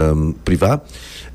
um, privá.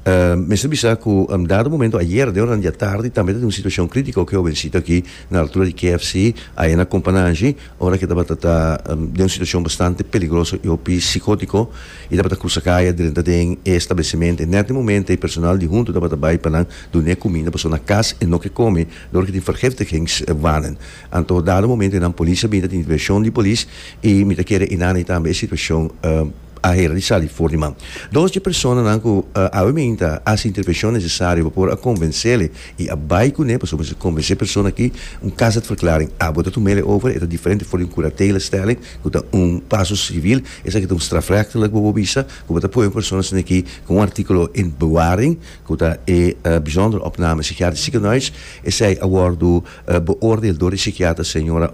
Um, mester bisa ku um, dado momento ayer de horan dia tardi tambe ta tin un situashon kritiko ku jovensito aki na altura di KFC aye na Kompanashi ora ke tabata ta um, den un situashon bastante peligroso i hopi sikótiko i tabata krusa kaya drenta den e establesimentu i nèt e momento e personal di huntu tabata bai pa nan dun'é kuminda pasobra na kas e no ke kome dor ke tin vergiftigingswannen anto dado momento nan polis a bini ta tin intervenshon di polis i mi ta kere inana tambe e situashon um, a hera di sali for di man. Dos dje personanan ku Awemin ta hasi intervenshon nesesario pa por a konvensele i a bai kuné pasobra mester konvensé persona aki un kazatverklaring abo ta tumele over e ta diferente for di un kuratelestelling ku ta un paso sivil esaki ta un strafrechtelijk bobo bisa ku bo ta pone un persona asina aki ku un artikulo in bewaring ku ta e bijzondere opname psikiatrisch ziekenhuis esei a wòrdu beoordeel dor e psikiater señora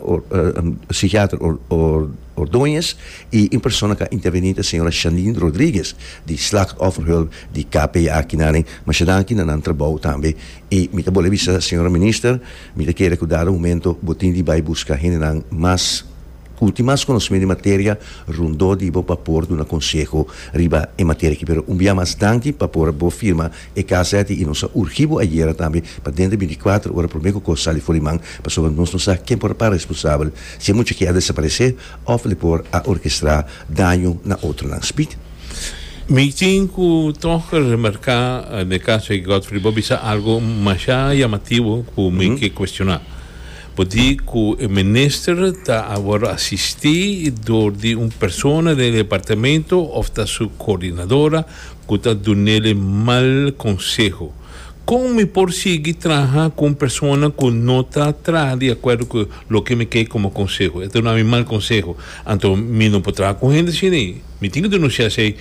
psikiater. Ordoñez y un persona ca interveni ta señora Shanine Rodriguez di Slachtofferhulp di KPA Kinaren. Masha danki na nan trabou tambe y mi ta bol'e bisa señora Minister mi ta kere cu dado momento bo tin di bay busca hendenan mas cu tin mas conocemento di materia rondó di bo pa por duna conseho riba e materia aki pero un bia mas danki pa por bo firma E KZI nos a urgí bo ayera tambe pa denter di binticuater ora promé cu cos sali for di man pasobra nos no sa ken por a para responsabel si e mucha aki a desaparecé of le por a orkestrá daño na otronan. Speak. Mi tin cu toch remarcá n'e caso di Godfrey bo bisa algo mashá yamativo cu mi ke cuestioná. Bo di cu e minister ta a worde asisti door di un persona den e departamento of ta su coordinadora cu ta dunele mal conseho. Con mi por sigui traha cu un persona cu no ta traha di acuerdo cu loke mi key como conseho? E ta duna mi mal conseho. Anto mi no por traha cu hende asini. Mi tin ki denuncia esey.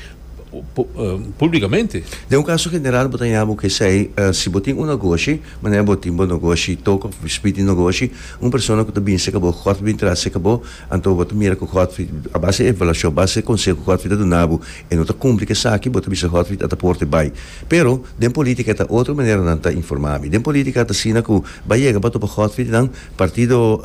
públikamente. Den un kaso general bo ta ña bo k'esei, si bo tin un nogoshi, manera bo tin bo nogoshi tok òf bispit di nogoshi, un persona ku ta bini serka bo, Gòd ta bini tras serka bo, anto bo ta mira ku Gòdfrid, a base di evaluashon, base di e konseho ku Gòdfrid ta duna bo, e no ta kumpli ku esaki, bo ta bisa Gòdfrid ata por te bai. Pero, den polítika ta otro manera nan ta informá mi. Den polítika ta asina ku bo a yega bo a topa Gòdfridnan, partido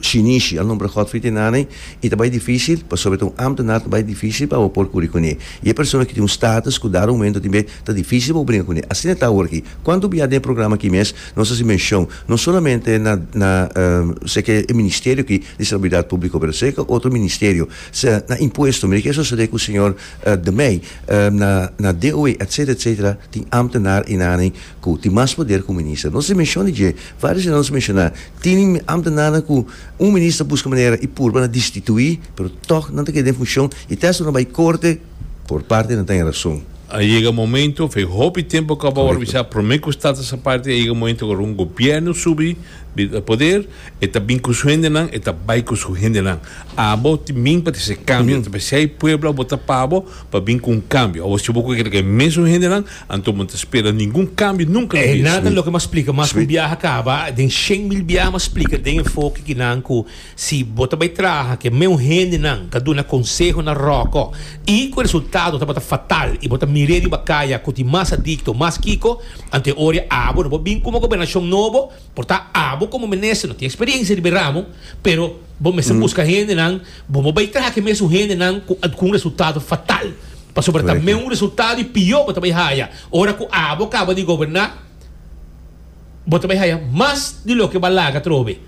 shinishi a nombra Gòdfrid e nan'e, I ta bai difísil, pasobra ta un ámtenar, ta bai difísil pa bo por kuri kuné. I e persona ki tin un státus ku dado aumento tin be ta difísil pa bo bringa kuné. Asina ta awor akí. Kuantu bia den e programa akí mes nos hasi menshon no solamente na na sea ke e ministerio akí di Salubridad Públiko pero sea ke otro ministerio sea na impuesto. Mira ke a sosodé ku señor De Mey na na DOW etcétera etcétera tin ámtenar i nan aní ku tin mas poder ku un minister. Nos hasi menshon di dje. Vários di nan nos menshona tin ámtenarnan ku. Un minister ta buska manera y purba na distitui, pero toch nan ta keda den funcion y te asina bay corte por parte nan ta den razon. A yega momento, fe hopi tempo cu a bou avisa prome cu stad ta sa parti, a yega momento cu ora un gobierno subi di poder e ta bin cu su hendenan, e ta bay cu su hendenan. Abo tin bin pa trece cambio, ta p'esey pueblo a bota pabo pa bin cu un cambio. Awor si bo cu kere cu e mesun hendenan Anto bo no ta spera ningun kambio nunka na bida. Nan ta loke mas splika mas ku un biaha a kaba den shen mil biaha mas splika den enfoke ki nan ku si bo ta bai traha ke meun hendenan ta duna konseho na roko i ku e resultado tabata fatal i bo ta mir'e riba kaya ku tin mas adikto mas kiko anto e ora a abo no bo bin ku un gobernashon nobo Por ta abo como minister no tin experiencia riba e ramo, pero bo mester busca hendenan, bo bo bay traha cu e mesun hendenan cu a cu un resultado fatal, pasobra ta meun resultado y pior bo ta bay haya ora cu abo caba di goberna, bo ta bay haya mas di loke bo a laga atrobe,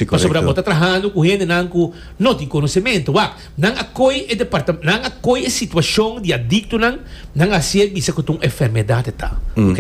pasobra bo ta trahando cu hendenan cu no tin conocemento. Wak, nan a coy e departa, nan a coy e situacion di adictonan, nan a haci'e bisa cu ta un enfermedad ta, ok.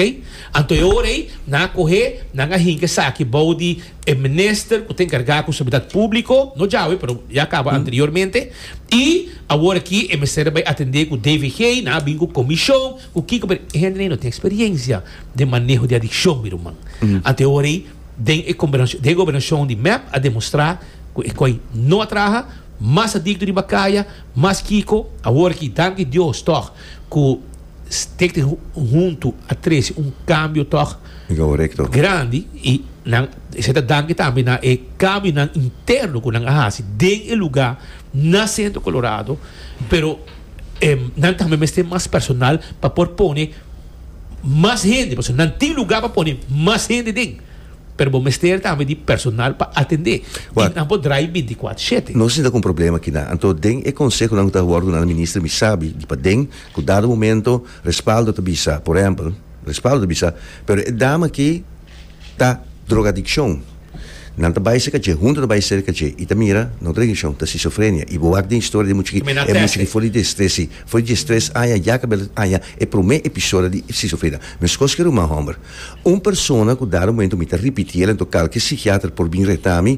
Anto e ora ei nan a cohe, nan a hinca esaki bou di e Minister cu ta encarga cu Seguridad Publico, no djawe pero ya caba anteriormente, y awor aki e mester a bay atende cu DVG, nan a bin cu comision, cu kico, pero e hende ei no tin experiencia den maneho di adiccion mi ruman. Anto e ora ei den e conbernacion, den e gobernacion di mep a demostra cu e coi no a traha, mas adicto riba caya, mas kico, awor aki, danki Dios toch, cu. Steek di huntu a trece un cambio toch grandi y nan esei ta danki tambe na e cambionan interno cu nan a haci den e lugar na Centro Colorado, pero nan tambe mester tin mas personal pa por pone mas hende, pasobra nan tin lugar pa pone mas hende den, pero bo mester tambe di personal pa atende y nan por draai binticuater shete. Nos tin ta cu un problema aki na, anto den e consehonan cu ta worde na Minister mi sabi di paden Ku dado momento Respaldo ta bisa, por ehempel, Respaldo ta bisa, pero e dama aki ta drogadikshon. Nan ta bai serka dje, huntu ta bai serka dje i ta mira nan drogadikshon ta skisofrenia. I bo wak den historia di e mucha aki, e mucha aki for di destres si, for di destres aña ya kabel ta aña e promé episodio di skisofrenia. Meskos ke ruman hòmber. Un persona ku dado momento mi ta ripitiel, anto kalke sikiater por bin reta mi,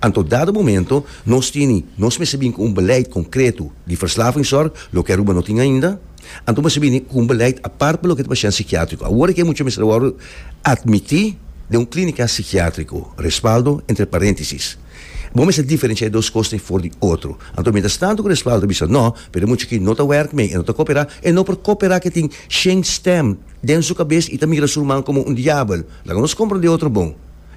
Anto dado momento nos tini, nos mester bini ku un beleid konkreto di verslavingssorg, loke Aruba no tin ainda. Anto mester bini ku un beleid apart pa loke ta pashen sikiatriko. Awor aki e mucha mester wòrdu atmití den un klínika sikiatriko, respaldo entre paréntesis. Bo mester diferensha e dos kos ta e for di otro. Anto mientras tanto ku respaldo ta bisa nò, pero e mucha aki no ta wèrk mei, e no ta koperá, e no por koperá ke tin shén stèm den su kabes i ta mira su ruman komo un diabel. Laga nos komprondé otro bon.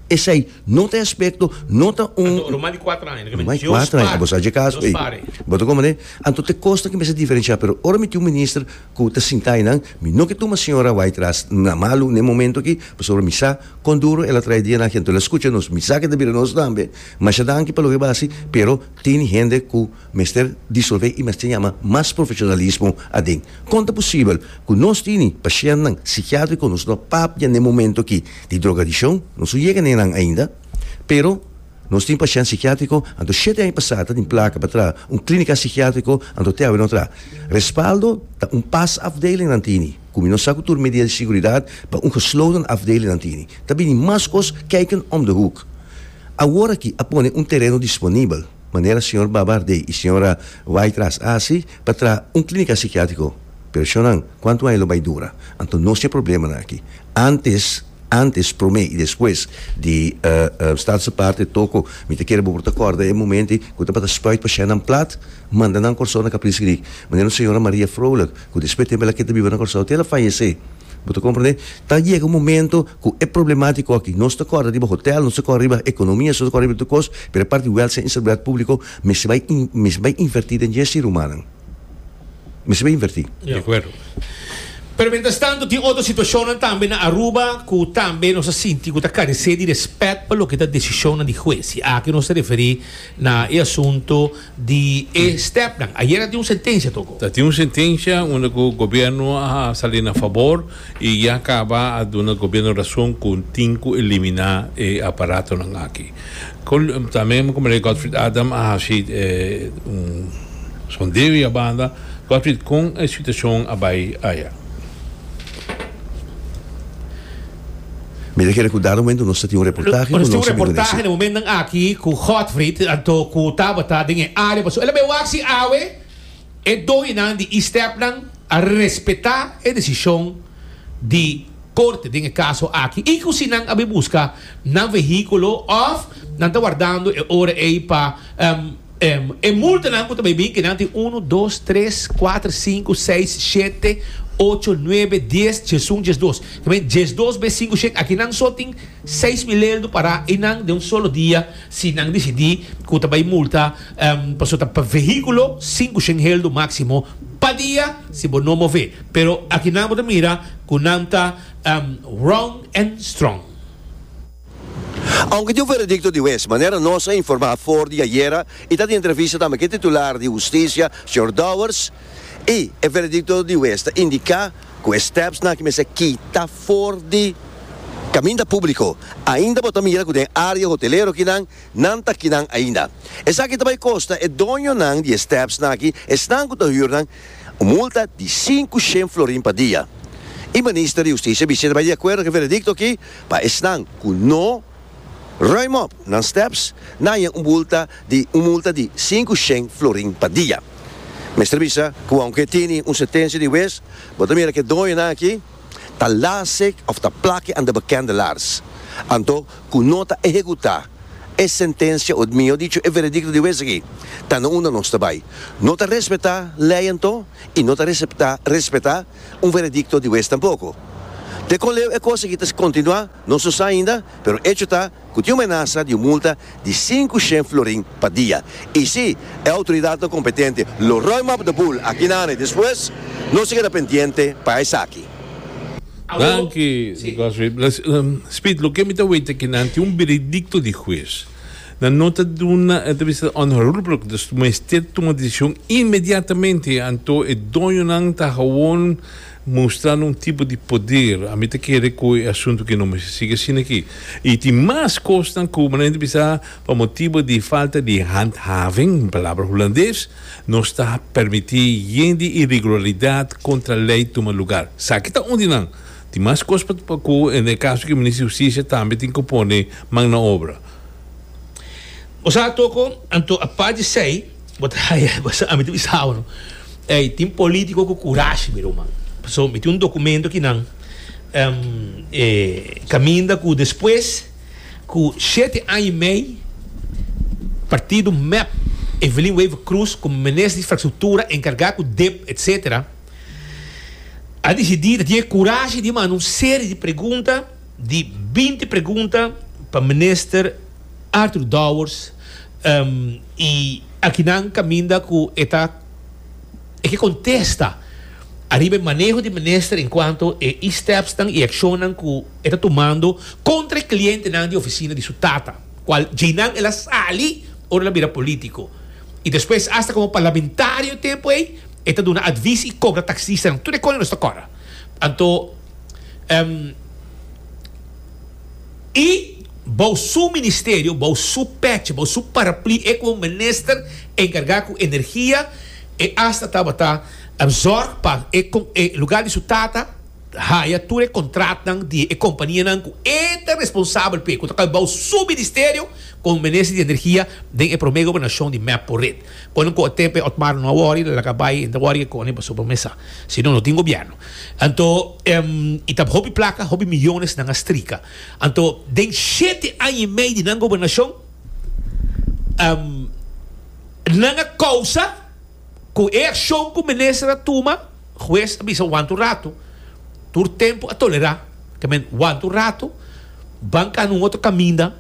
Esei no ta e aspekto, no ta un. Anto, ruman di kuater aña, dikon mi, Dios Pare, Dios Pare. Bo ta komprende? Anto ta e kos ki mester diferensha, pero ora mi tin un minister ku ta sinta einan, mi no ke tuma señora wai tras na malu n'e momento aki, pasobra mi sa kon duro el a traha e dia naki, anto el a skucha nos, mi sa ke ta bira nos tambe. Masha danki pa loke bo a hasi, pero tin hende ku. Mester disolvé i mester yama mas profeshonalismo aden. Kon ta posibel ku nos tini pashèntnan sikiátriko nos lo papia n'e momentu akí di drogadikshon? Nos no yega n'e nan ainda. Pero, nos tin pashènt sikiátriko, anto shete aña pasá ta tin plaka pa traha un klínika sikiátriko, anto te awe no traha. Respaldo ta un pas afdeling nan tini, ku mi no sa ku tur medida di seguridat pa un gesloten afdeling nan tini. Ta bini mas kos kijken om de hoek. Awor akí a pone un tereno disponibel. manera señor Babardé y señora Wytras a haci pa traha un clinica psiquiatrico. Pero shonnan, cuanto aña lo bay dura? Anto nos tin e problemanan aki. Antes, antes, prome y despues di Staat su parte toco, mi ta kere bo por ta corda e momenti cu tabata spuit pa shennan plat, manda nan Corsou na Capri's Creek. Manera un señora Maria Froelich, cu despues tempo el a keda biba na Corsou te el a fayece. Bo ta komprendé? Ta yega un momento ku e problemátika aki, nos ta kòrda riba hotèl, nos ta kòrda riba ekonomia, nos ta kòrda riba tur kos, pero e parti di wèlsia i seguridad públiko mester bai mester bai invertí den dje ser humannan. Mester bai invertí. De akuerdo. Pero miéntras tantu tin otro situashonnan tambe na Aruba ku tambe nos ta sinti ku ta karesé di rèspèt pa loke ta desishonnan di hues i aki nos ta referí na e asuntu di e stepnan. Ayera a tin un sentencia toko. Ta tin un sentencia unda cu gobierno a sali na fabor y ya caba a duna gobierno razon cu tin cu elimina e aparatonan aki. Tambe Meneer Godfried Adam a haci un sondeo y a banda. Godfried, con e situacion a bay aya? Mi ta kere ku dado momento nos ta tin un reportahe ku nos bin kuné su. Momentan aki ku Godfrid anto ku Tabata den e área pasobra el a bai wak si awe e dohinan di Eastepnan a respetá e desishon di korte den e kaso aki i ku si nan a bai buska nan vehíkulo òf nan ta wardando e ora ei pa Em, e multanan ku ta bai bin, ke nan tin unu, dos, tres, kuater, sinku, seis, shete, ocho, nuebe, dies, djesun, djesdos. Ta bin, djesdos be sinku shet, aki nan so tin seis mil lel do pará i nan den un solo dia, si nan disidí ku ta bai multa, em, pasobra ta pa vehíkulo, sinku shen hel do máksimo pa dia si bo no move. Pero aki nan bo ta mira ku nan ta, em, rong en strong. Aunke di un veredicto di huez, manera nos a informa afor di ayera y ta di entrevista tambe cu e titular di Husticia, señor Dowers, y e veredicto di huez ta indica cu e stepsnan aki mester kita for di caminda publico, ainda bo ta mira cu den area hotelero aki nan, nan ta kinan ainda. Esaki ta bay costa e doñonan di e stepsnan aki, esnan cu ta huur nan, un multa di cinco shen florin pa dia. Y Minister di Husticia bic'e ta bay di acuerdo cu e veredicto aki, Pa esnan cu no ruim op nan steps, nan haña un bulta di un multa di sinku shen florin pa dia. Mester bisa cu aunke e tini un sentencia di wes, bo ta mira cu e doñonan aki ta lasig of ta plaki anda bekende lars, anto cu no ta ehecuta e sentencia o mihor dicho e veredicto di wes aki, ta na unda nos ta bay. No ta respeta ley anto y no ta respeta un veredicto di wes tampoko. Te kon leu e kos aki ta kontinuá, no so sa ainda, pero echo ta ku tin un menasa di un multa di sinku shen florin pa dia. I si e outoridatnan kompetente lo ròi mòp de bul aki na ane despues, nos a keda pendiente pa esaki. Danki, Goswin. Speed, loke mi ta wete kinan tin un beredicto di hues. Na nota duna entrevista on Holbrook dus mester tuma decision inmediatamente anto e doñonan ta hawon mustrando un tipo di poder ami ta kere cu e asunto aki no mester sigui asinaki y tin mas cosnan cu manera di bisa pa motibo di falta di handhaving un palabra Hulandes nos ta permiti yen di irregularidad contra ley tuma lugar sa aki ta un di nan. Tin mas kos pa pa ku en e kaso ku Minister di Hustisia tambe tin ku pone man na obra. Bo sa toko, anto apart di esei, bo ta haya, bo sa, ami ta bisa a'wanu, ey, tin politico cu curashi mi ruman, pasobra mi tin un documento ki nan, ehm, eh, caminda cu despues cu shete aña y mey partido mep Evelyn Wever-Croes como minister di Infrastructura encarga cu dip, etcetera, a disidí, ta tin e kurashi di manda un serie di pregunta, di binti pregunta, pa Minister Arthur Dowers, i akinan kaminda ku e ta e ke kontesta ariba e maneho di Minister enkuanto e i stèpsnan i akshonnan ku e ta tumando kontra e klientenan di ofisina di su tata, kual djeinan el a sali ora el a bira polítiko i despues asta komo parlamentario tempu ei. E ta duna advis i kobra taksistanan tur e koe nos ta kòrda. Anto ehm i bou su ministerio, bou su pèchi, bou su parapli e ku un minister enkargá ku energia e asta tabata zòrg pa e kon e lugá di su tata haya tur e kontratnan di e kompanianan ku e ta responsabel p'e ku ta kai bou su ministerio komo minister di energia den e promé gobernashon di Mappo Rit. Kono ku otp otmar no a wori lo laga bai en ta wori e kone pasobra mesa si no no tin gobièrnu anto i ta hopi plaka hopi miyones nan a strika anto den shete aña i mei di nan gobernashon nan a kousa ku e akshon ku minister a tuma hues a bisa wanta un ratu tur tempu a tolerá ta men wanta un ratu ban kanda un otro kaminda.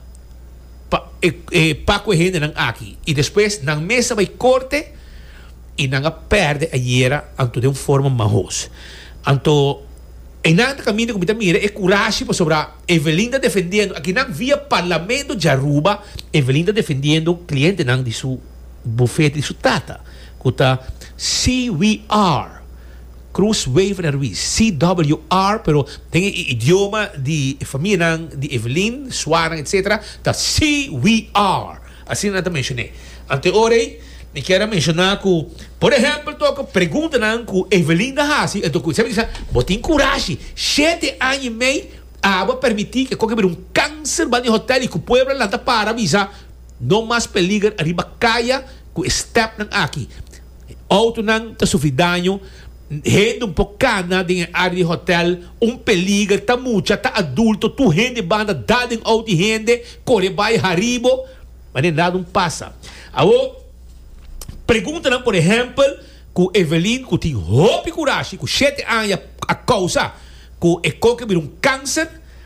pa e pa ku e hendenan aki i despues nan mes a bai korte i nan a pèrdè ayera anto den un forma mahos anto einan ta kaminda ku mi ta mira e kurashi pasobra Evelin ta defendiendo aki nan via parlamento di Aruba Evelin ta defendiendo klientenan di su bufete di su tata ku ta CWR. Cruz Wever Ruiz, CWR, pero den e idioma di e famianan di Evelyn, suanan, etc. Ta CWR. Asina nan ta menshoné. Ante ora ei, mi kier a menshoná ku, por ehèmpel tok, preguntanan ku Evelyn a hasi, anto ku e sabi sa, bo tin kurashi, shete aña i mei a bo a permití ke koke bira un kanser banda e hotèl i ku Puebla lanta para bisa, no mas peliger ariba kaya ku e stèpnan aki. E outonan ta sufri daño, hende un por kana den e área di hotel, un peliger ta mucha, ta adulto, tur hende banda dal den outo i hende kore bai haribo, ma den nada un pasa. Awor, preguntanan por ehèmpel ku Evelyn ku tin hopi kurashi ku shete aña a kousa ku e koke bira un kanser,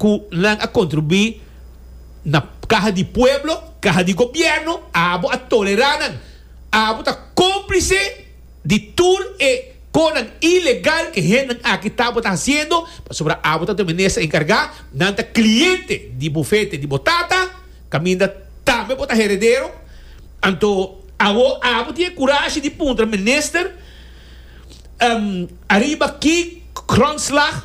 ku nan a kontribuí na kaha di pueblo, kaha di gobièrnu, abo a tolerá nan, abo ta kómplise di tur e konan ilegal ku e hendenan aki tabata hasiendo, pasobra abo ta Dominé sa enkargá, nan ta kliente di bufete di bo tata, kaminda tambe bo ta heredero, anto awor abo tin e kurashi di puntra minister, Ariba ki grondslag?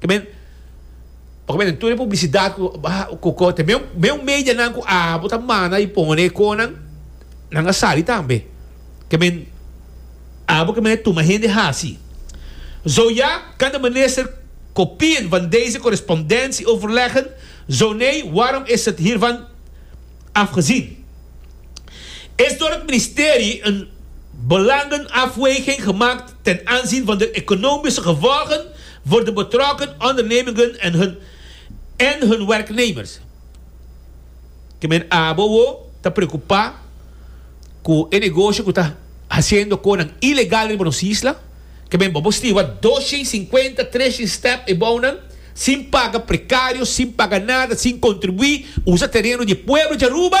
Ta bini, oca mi ta tuna e publicidad cu cu ta mi un medianan cu abo ta mana y pone e conan, nan a sali tambe. Ta bini, abo caminda e tuma hende haci. Zo ja, Kanda Minister Kopien van deze correspondentie overleggen, zo nee, waarom is het hiervan afgezien? Is door het Ministerie een belangenafweging gemaakt Ten aanzien van de economische gevolgen voor de betrokken ondernemingen en hun en hun werknemers, ke men abo ta preocupa cu e negoshi cu ta haciendo conan ilegal riba nos isla, ke men bobo stiva doshien cincuenta treshien step ebounan, sin paga precario, sin paga nada, sin contribui, usa tereno di e pueblo di Aruba,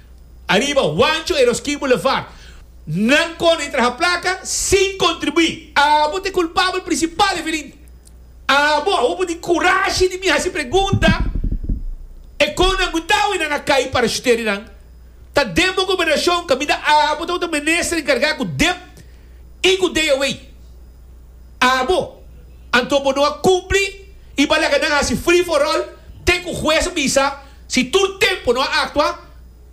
Ariba Huancho e Roskin Boulevard. Nan kòrda i traha plaka sin kontribuí. Abo ta e kulpabel prinsipal, Evelyn. Abo, abo bo tin kurashi di mi hasi pregunta e kon nan ku tau i nan a kai parashutero i nan ta den bo gobernashon kaminda abo tau ta minister enkargá ku dep i ku DOE. Abo, anto bo no a kumpli i bo a laga nan hasi free for all te ku hues a bisa Si tur tempu no a aktua,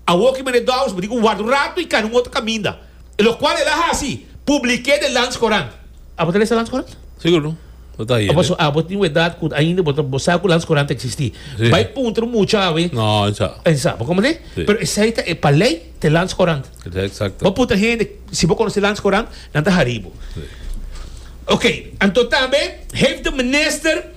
a woki meneer Dowers bo di ku warda un ratu i kana un otro kaminda. I lokual el a hasi, publik'é den Landscourant. Abo ta lesa Landscourant? Sigur no. Bo ta hie den. Abo tin un edat ku ainda bo ta bo sa ku Landscourant ta eksistí. Bai puntra un mucha awe. No, e sa. E sa. Bo komprendé? Pero esei ta e pa lei ta e Landscourant. Esei eksakto. Bo puntra hende si bo konosé Landscourant, nan ta harí bo. Oké, anto tambe hèf de minister.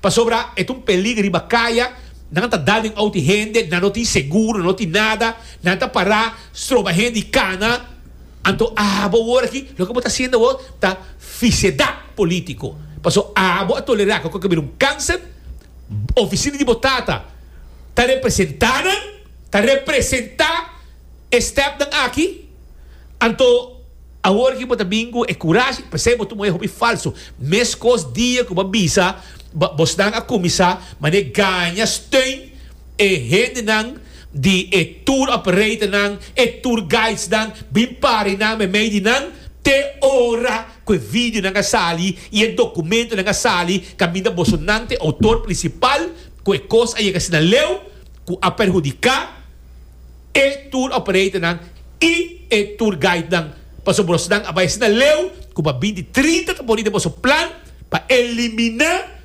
Pasobra e ta un pelig riba kaya, nan ta dal den outi hende, nan no tin seguro, nan no tin nada, nan ta para stroba hende i kana. Anto abo awor aki loke bo ta hasiendo awor ta fisedat politico, paso abo a tolera cu aki a bira un cancer, oficina di bo tata ta representa nan, ta representa e stepnan aki, anto. Awor ki bo ta bin ku e kurashi, p'esei bo tuma e hopi falsu. Meskos dia ku bo a bisa, bosnan a kuminsá manera gaña steun e hendenan di e tour operatornan, e tour guidesnan, bin para nan me mei di nan, te ora ku e videonan a sali i e dokumentonan a sali kaminda boso nan ta e outor prinsipal ku e kos a yega asina leu ku a perhudiká e tour operatornan i e tour guidenan pasobra bosonan a bai asina leu ku pa bin di trinta ta pone den boso plan pa eliminá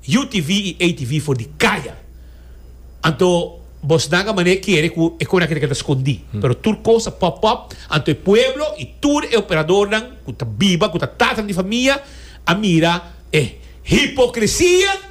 UTV i ATV for di kaya. Anto bosonan a manera kere ku e konan keda keda skondí, pero tur kos a pop up, anto e pueblo i tur e operadornan ku ta biba, ku ta tatan di famia a mira e hipokresia.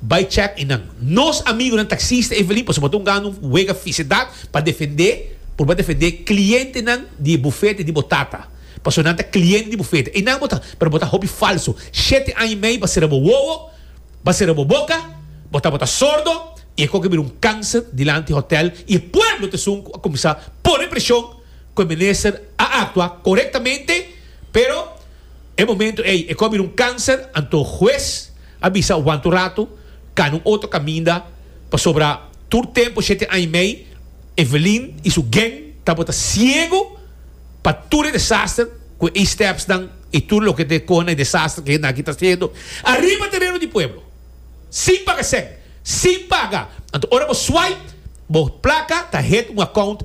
Bai check e nan. Nos amigunan taxista Evelyn pasobra bo ta un gana un wega fisidat pa defende, por bo defende clientenan di e bufete di bo tata, pasobra nan ta cliente di bufete. Einan bo ta, pero bo ta hopi falso. Shete aña y mei bo a sera bo wowo, bo a sera bo boca, bo tabata sordo y e coge a bira un cancer dilanti hotel y e pueblo ta esun cu a cuminsa pone presion cu e minister a actua correctamente pero E momento ey e cu a bira un cancer, anto hues a bisa wanta un rato, cana un otro caminda, pasobra tur tempo shete aña y mey Evelyn y su gen tabata ciego pa tur e desaster cu e stepsnan y tur loke ta coge na e desaster cu e hende aki ta haciendo ariba tereno di pueblo, sin paga cen, sin paga, anto ora bo swipe bo placa ta hit un account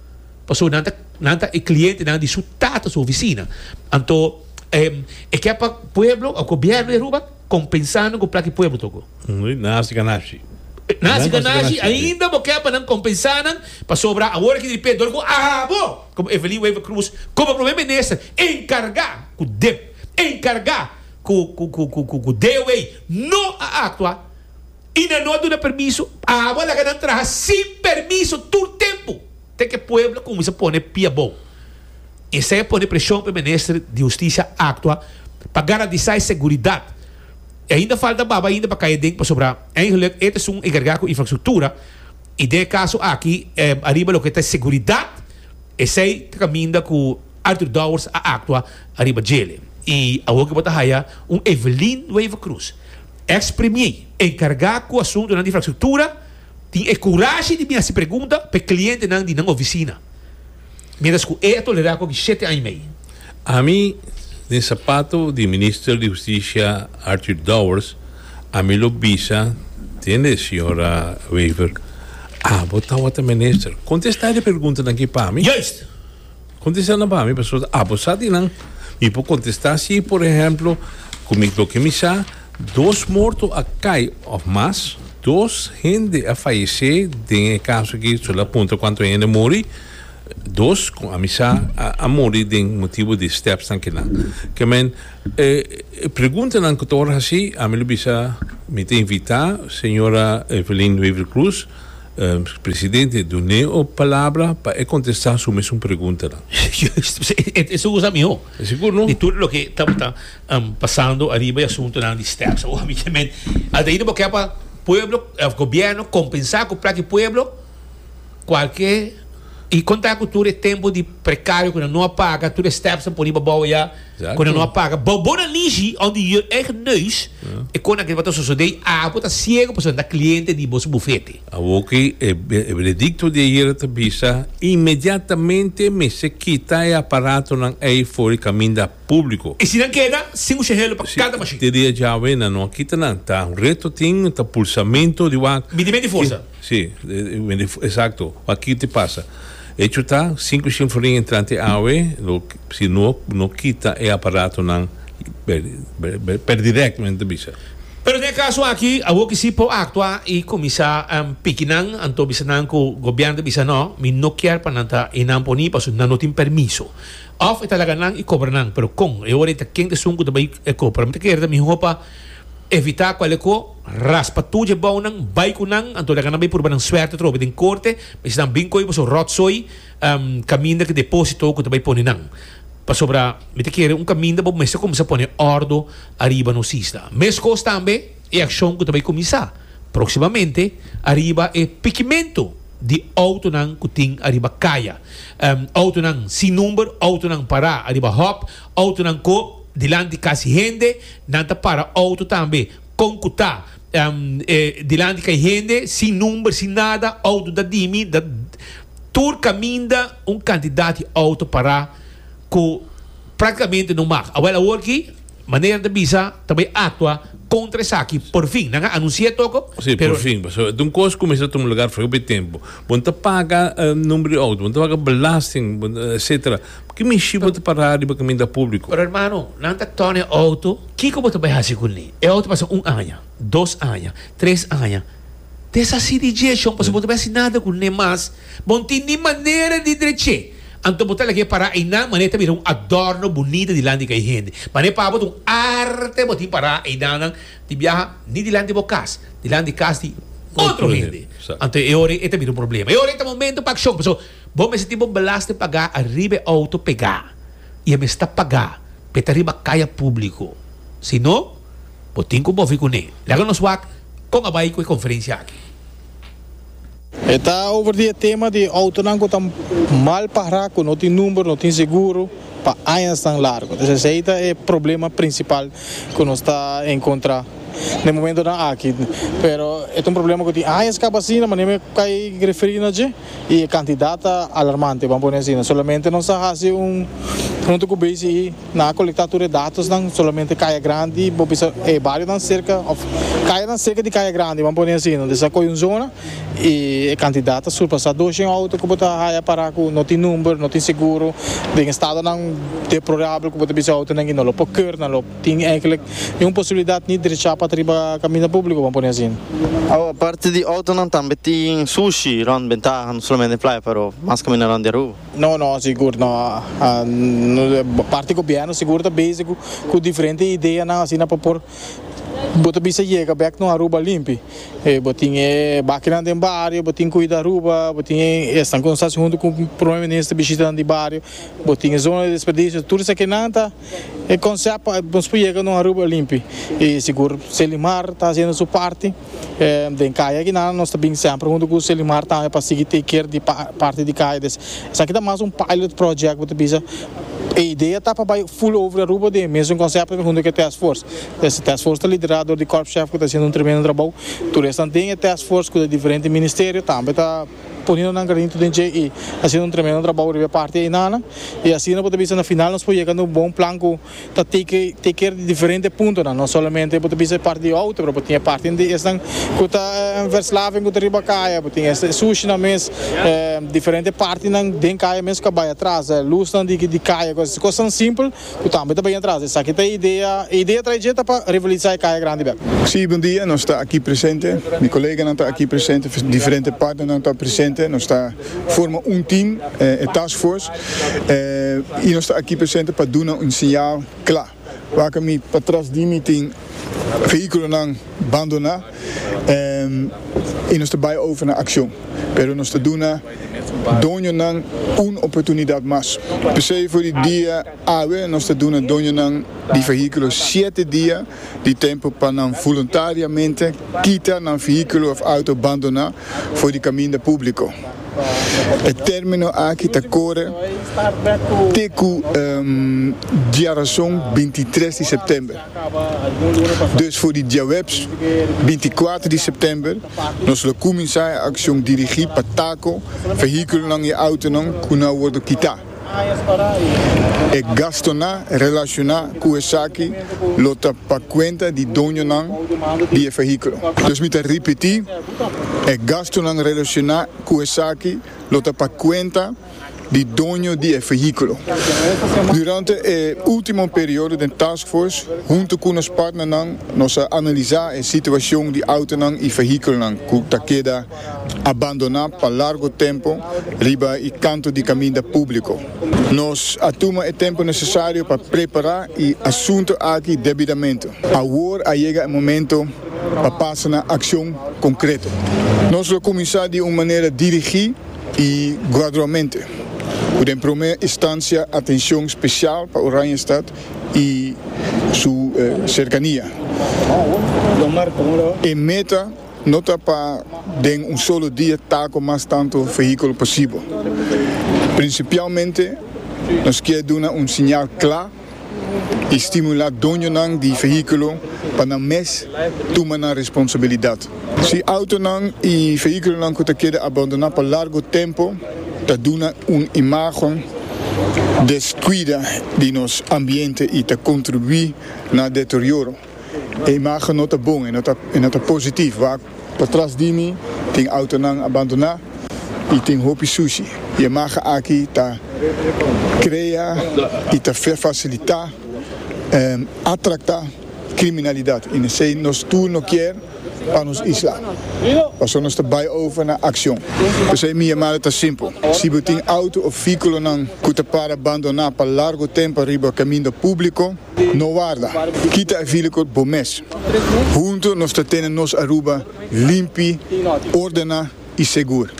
Paso nan ta nan ta e clientenan di su tata su oficina. Anto e ke pa pueblo o gobierno di Aruba compensando cu plaki pueblo toco. Nasi ganashi. Nasi ganashi ainda bo ke pa nan compensá nan pasobra awor aki diripe dor cu abo como Evelyn Wever Croes como Prome Minister encarga cu dep encarga cu cu cu cu cu DOA no a actua. I nan no a duna permiso. Abo a laga nan traha sin permiso tur tempu te ke pueblo a kuminsa pone pia abou. Esei a pone preshon pa e minister di hustisia aktua pa garantisá e seguridat. E ainda falta baba ainda pa kai aden pasobra eingeluk e ta esun enkargá ku infrastruktura i den e kaso aki ariba loke ta e seguridat esei ta kaminda ku Arthur Dowers a aktua ariba djele. I awor ke bo ta haya un Evelyn Wever-Croes. Ex premier, encarga cu asuntonan di infrastructura, tin e curashi di bin haci pregunta p'e clientenan di nan oficina, mientras cu e a tolera cu aki shete aña y mei. Ami, den sapato di Minister di Husticia Arthur Dowers, ami lo bisa den e Sra. Wever, Abo tawata Minister. Contesta e preguntanan aki pa mi. Juist! Contesta nan pa mi pasobra ta abusa di nan mi por contesta si por ehemplo cu mi loke mi sa dos morto a cay of mas dos hende a fayece den e caso aki so la punta cuanto hende a muri dos con a mi sa a muri den motibo di steps nan ki nan ke men e pregunta nan cu torha haci a mi lo bisa mi ta invita señora Evelyn Wever-Croes. Presidente dun'é o palabra pa e contesta su mesun preguntanan. E segur sa miho. E segur no. Di tur loke tabata pasando ariba e asuntonan di step sa obviamente ata ahí no bo ke pa pueblo of gobierno compensa cu plaki pueblo cualke y conta cu tur e tempo di precario cu nan no a paga tur e steps ta poniba bow ya. Kono no a paga. Bou bo na Nishi on di your eigen neus e konan kende pa ta sosode i apo ta siego pasobra nan ta kliente di bo su bufete. Awor ki e benedikto di ayera ta bisa, inmediatamente mester kita e aparatonan ei for di kaminda públiko. I si nan keda sin usha helu pa kada mashin? Te dia djawe nan no a kita nan. Ta un reto tin, ta pulsamentu di wak. Binti menti forsa. Si, exacto, pa kiti pasa. Echo ta, sinku shinfulin entrante awe lo si no no kita e aparatonan per direct men ta bisa. Pero den e kaso aki awo ki si por aktua i kuminsá piki nan, anto bisa nan ku gobièrnu ta bisa nò mi no kier pa nan ta i nan poní pasobra nan no tin permiso. Òf e ta laga nan i kobra nan, pero kon? E ora ei ta ken esun ku ta bai e kopra? Mi ta kere ta mihó pa. Evitá kualeko raspa tur djebounan, bai ku nan, anto laga nan bai purba nan suerte atrobe den korte, misti nan bin koi boso ròtsoi kaminda ku deposito ku ta bai pone nan. Pasobra mi ta kere un kaminda bo mester kuminsá pone òrdu ariba nos isla. Meskos tambe e akshon ku ta bai kuminsá próksimamente ariba e pikimentu di outonan ku tin ariba kaya, outonan sin number, outonan pará ariba hòp, Outonan ko dilanti kasi hende, nan ta para outo tambe. Kon ku ta, dilanti kai hende sin number, sin nada, outo da dimi, da tur kaminda un kantidat di outo para ku praktikamente no mag. Awel awor ki manera nan ta bisa ta bai aktua kontra esaki porfin. Nan a anunsi'é toko, Sí, pero. porfin, pasobra ta un kos ku kumesa tuma lugar afó e tempu. Bo no ta paga number di outo, bo no ta paga belasting, etsetera. Porque mishi bo ta pará riba caminda público? Pero hermano, nan ta tona e auto, kico bo ta bay haci cul ni? E auto pasa un aña, dos aña, tres aña, deshaci di dje, shon, pasobra bo ta bay haci nada cul ne mas. Bo no tin ni manera di drech'é, anto bo ta lag'é pará einan manera e ta bira un adorno bunita dilanti di e hende. Manera pa bo ta un arte bo tin pará einan di biaha, ni dilanti di bo cas, dilanti di cas di otro hende. Anto e ora ei ta bira un problema. E ora ei ta momento pa accion, pasobra. Bo mester tin bo belasting pagá ariba e outo pegá i e mes ta pagá pa e ta riba kaya públiko. Si no, bo tin ku movi kuné. Laga nos wak kon a bai ku e konferensia aki. E ta over di e tema di outonan ku ta mal pará, ku no tin number, no tin seguro pa añasnan largu. Entonces esei ta e problema prinsipal ku nos ta enkontrá den momentonan aki. Pero e ta un problema ku tin añas kaba asina, manera mi a kai referí na dje. y e cantidad ta alarmante ban pone asina solamente nos a haci un hunto cu bci nan a colecta tur e datosnan solamente Caya Grandi bo bisa e barionan cerca of cayanan cerca di Caya Grandi ban pone asina nos a coge un zona y e cantidad ta surpasa doshen auto cu bo ta haya para cu no tin number no tin seguro den estadonan deplorable cu bo ta bisa e autonan que no lo por ker nan lo Tin enkele ni un posibilidat ni drechá pa ta riba kaminda públiko, bo pone asin. Awa, parti di outonan tambe tin sushi rònt bentaha, no solamente playa pero mas kaminda rònt di Aruba. No, no, sigur no. Parti gobièrnu sigur ta bezig ku diferente ideanan asina pa por bo ta bisa yega bèk no Aruba limpi. Bo tin e bakinan den bario, bo tin Kuida Aruba, bo tin esnan ku nos hasi huntu ku Prome Minister bishitanan di bario, bo tin e zona di desperdisio, tur esaki nan ta. E konsèp pa nos por yega na un Aruba limpi i sigur. Selimar ta hasiendo su parti den kaya akinan. Nos ta bin semper huntu ku Selimar tambe pa sigui take care di parti di kaya. Des esaki ta mas un pilot project bo ta bisa. E idea ta pa bai full over Aruba den e mesun konsèp huntu ku e task force. Des e task force ta liderá dor di Corp Chef ku ta hasiendo un tremendo trabou. Tur esnan den e task force ku ta di diferente ministerio tambe ta. poniendo nan granito den dje y haciendo un tremendo trabao riba e parti einanan y asina bo ta bisa na final nos por yega na un bon plan cu ta take take care di diferente puntonan, no solamente bo ta bisa e parti di auto pero bo tin e parti di esnan cu ta Verslaving cu ta riba caya, bo tin e sushinan mes, diferente partinan den caya mes cu a bay atras, lusnan di caya, cosnan simple Cu tambe ta bay na traza. Esaki ta e idea. E idea trae dje ta pa revoluiza e Caya Grandi bek. Sí, bon dia. Nos ta aki presente. Mi coleganan ta aki presente. Diferente partnernan ta presente. Nos ta forma un team, e task force. Y nos ta aki presente pa duna un señal cla. Wak mi patras di mi tin vehiculonan. bandoná i nos ta bai over na akshon, pero nos ta duna doñonan un oportunidat mas. P'esei for di dia awe nos ta duna doñonan di fehíkulo shete dia di tempu pa nan voluntariamente kita nan fehíkulo òf outo bandoná for di kaminda públiko. E término aki ta kore te ku diarason bintitres di sèptèmber. Dus for di diahuebs binti kuater di sèptèmber nos lo kuminsá e akshon dirigí pa tako vehíkulonan i outonan ku no a wòrdu kitá. E gastonan relashoná ku esaki lo ta pa kuenta di doñonan di e vehíkulo. Dus mi ta ripetí, e gastonan relashoná ku esaki lo ta pa kuenta. di doño di e vehiculo. Durante e ultimo periodo den taskforce, hunto cu nos partnernan, nos a analisa e situacion di autonan y vehiculonan cu ta keda abandona pa largo tempo riba e canto di caminda publico. Nos a tuma e tempo necesario pa prepara e asunto aki debidamente. Awor a yega e momento pa pasa na accion concreto. Nos lo cuminsa di un manera dirigi. y gradualmente cu den prome instancia atencion special pa Oranjestad y su cercania. E meta no ta pa den un solo dia ta cu mas tanto vehiculo posibel. Principialmente nos kier duna un siñal cla. i stimulá doñonan di vehíkulo pa nan mes tuma nan responsabilidat. Si outonan i vehíkulonan ku ta keda abandoná pa largu tempu ta duna un imágen deskuida di nos ambiente i ta kontribuí na deterioro, E imagen no ta bon, e no ta positief wak. Patras di mi tin autonan abandoná i tin hopi sushi. E imagen aki ta krea i ta fasilitá atraktá kriminalidat i nesei nos tur no kier pa nos isla. Paso nos ta bai over na akshon. P'esei mi yamada ta simpel. Si bo tin auto of vehikulonan ku ta para abandoná pa largu tempu riba kaminda públiko, No warda, kita e vilikot bo mes. Huntu nos ta tene nos Aruba limpi, ordena i segur.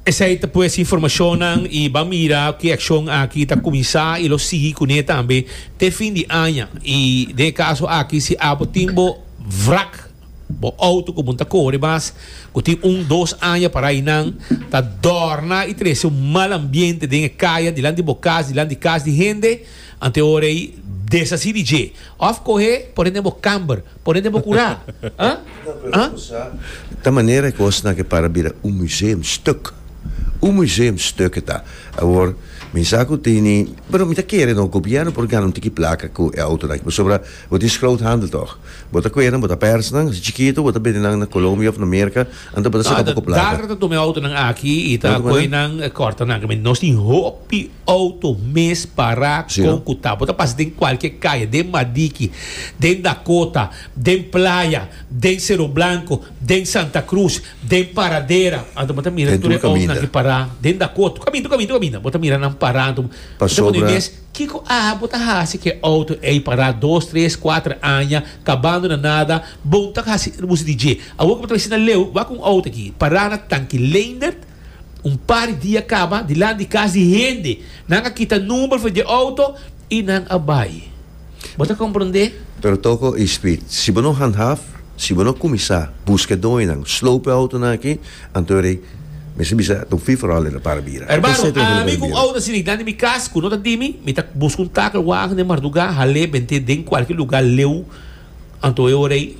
Esei ta pues informacionnan y ban mira cu e accion aki ta cuminsa y lo sigui cune tambe te fin di aña. Y den e caso aki si abo tin bo wrak Bo auto cu bon ta core mas, cu tin un, dos aña para aynan, ta dorna y trece un mal ambiente den e caya, dilanti di bo cas, dilanti di cas di hende, ante ora ey deshaci di dje, of coge pone den bo camber, pone den bo cura, ah? Ta manera e cosnan ke para bira un museum stuk, un museum stuk ke ta, awor mi sa cu tini, pero mi ta kere no, gobierno por gana un tiki placa cu e autonan, pasobra. Bo tin scroot handel toch? Bo ta cuenan, bo ta pers nan, si chiquito bo ta bende nan na Colombia of na Merca, anto bo ta saca poco plata. Darna ta tuma e auto nan aki y ta coe nan corta nan aki. Nos tin hopi auto mes para con cu ta. Bo ta pasa den cualkier caye, den Madiki, den Dakota, den Playa, den Cerro Blanco, den Santa Cruz, den Paradera, anto bo ta mira tur e autonan aki para den Dakota. Caminda, caminda, caminda bo ta mira nan para anto bo ta pone mes. Kiko aha bo ta hasi ke outo ey pará dos tres kuater aña kabando na nada bon ta hasi erbusi di dje awor ke bo ta besi na leu wak un outo aki pará na tanki leendert un par di dia kaba dilant di kas di hende nan a kita number for dje outo y nan a bai bo ta komprondé. Pero toko e spit si bo no handhaf si bo no kuminsá buske doño nan slope outo nan aki Anto rei, mi su bisa ta un free for all den e para bira. Hermano, ami ku un oda sinignan di mi kas ku no ta di mi, mi ta buska un takel wagen den marduga, hal'é bent'é den kualke luga leu, anto e ora ei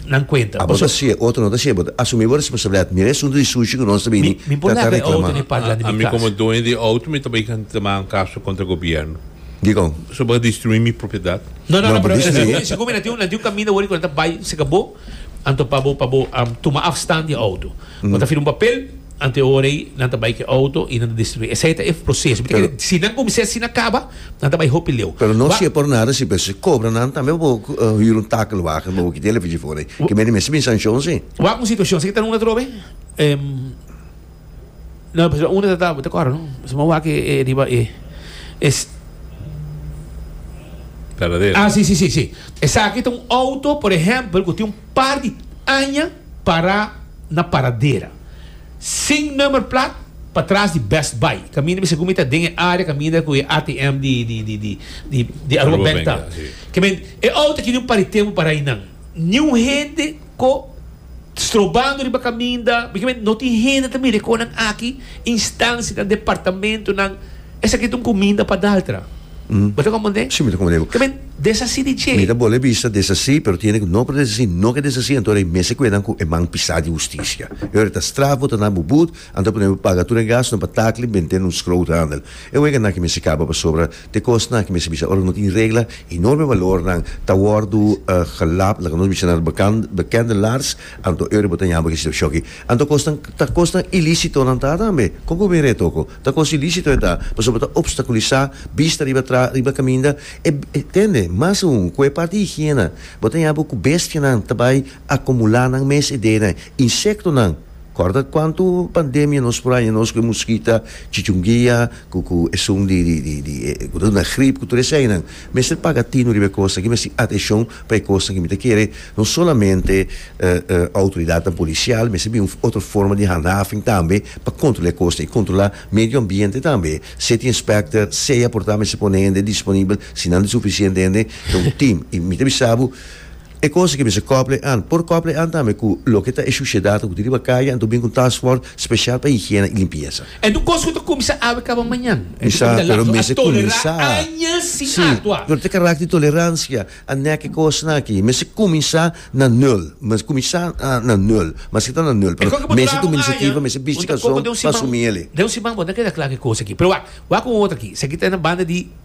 nan kuenta. Abo ta si e otro no ta si, bo ta asumí bo responsabilidat. Mira e asuntu di sushi ku nos ta bini ta ta reklamá. Ami komo doño di e outo mi ta bai tama un kaso kontra gobièrnu. Dikon? So bo ta destruí mi propiedat? No, no, no, pero segun mi nan tin un kaminda wòrdu ku nan ta bai, si ka bo. Anto pa bo pa bo tuma afstand di e auto. Bo ta firma un papel, anto e ora ei nan ta bai ku e auto i nan ta destruí. Esei ta e proseso. Mi ta kere si nan kuminsá asina na kaba nan ta bai hopi leu. Pero no siempre por nada si pues kobra nan tambe pa bo hür un takelwagen pa bo kiti e lefechi for ei. Ke mester mester bin sankshon si. Wak un situashon, esei ta runda atrobe. No, pues lo uno ta tabo te coro, no? Suma wak e, e riba e. Es. Taladera. Ah, sí, sí, sí, sí. Esaki ta un auto, por ehempel, cu tin un par di aña para na paradera. Sin number plat, patras di Best Buy. Caminda mi segun mi ta den e area caminda cu e ATM di, di, di, di, di, di Aruba Bank ta. Aruba Bank, ya, sí. Ke men, e auto aki di un par di tempo para ainan. Ni un hende. Ko strobando riba kaminda bikimi no tin hende ta mire konan aki instansianan departamentonan esaki ta un kuminda pa daltra bo ta kompondé Si mi ta kompondé bo. Tambe desasí di dje. Mi ta bol'e bisa desasí pero tiene ku no por desasí no ke desasí anto ora e mes e kuenan ku e man pisá di hustisia e ora ta straf bo ta na bo but anto a pone bo paga tur e gastunan pa takli bent'e un schroothandel e wega nan ke mester kaba pasobra Te kosnan ku mester bisa, Ora no tin regla, enorme balornan ta wòrdu gelap, loke nos bisa na bekende laars, anto Euribo ta yama kos shòk ei. Anto kosnan ta kosnan ilísitonan ta tambe. Kon ku bira e toko? Ta kos ilísito e ta, pasobra ta opstakulisá bista riba traha, riba kaminda. E tende, mas aún ku e parti higiena, bo ta yama ku bestianan ta bai akumulá nan mes ideanan, insektonan. Corda cuantu pandemia nos por haña nos cu e muskita chichunguia cu cu esun di di di di e cu ta duna grip cu tur esainan. Mester paga tino riba e cosnan aki, mester haci atencion pa e cosnan aki. Mi ta kere no solamente autoridadnan policial mester bin un otro forma di handhaving tambe pa controla e cosnan y controla medio ambiente tambe. City inspector sea por ta mester pone hende disponibel si nan ta suficiente hende ta un team y mi ta bisa bo E cosa ke mester kople an. Por kople an tambe ku loke ta e shushedad hopi riba kaya anto bin ku un task force special pa higiena y limpieza. Entu kos ku ta kumsa awe kaba mañan. Entu Kisa, kumsa pero lakso. A mester tolerá kuminsá. añas sin Sí, aktua. pero ta karakter di tolerancia. A nek e kosnan aki. Mester kuminsá na nul. Mester kuminsá na nul. Maske ta na nul, E pero kon ke bo ta mester duna tuma un aya, inisiativa, mester bisti bo ta koko kalson den un pa siman, asumí elei. den un siman bo ta keda kla ku e kosa aki. Pero wak, wak un otro aki. Esaki ta na banda di.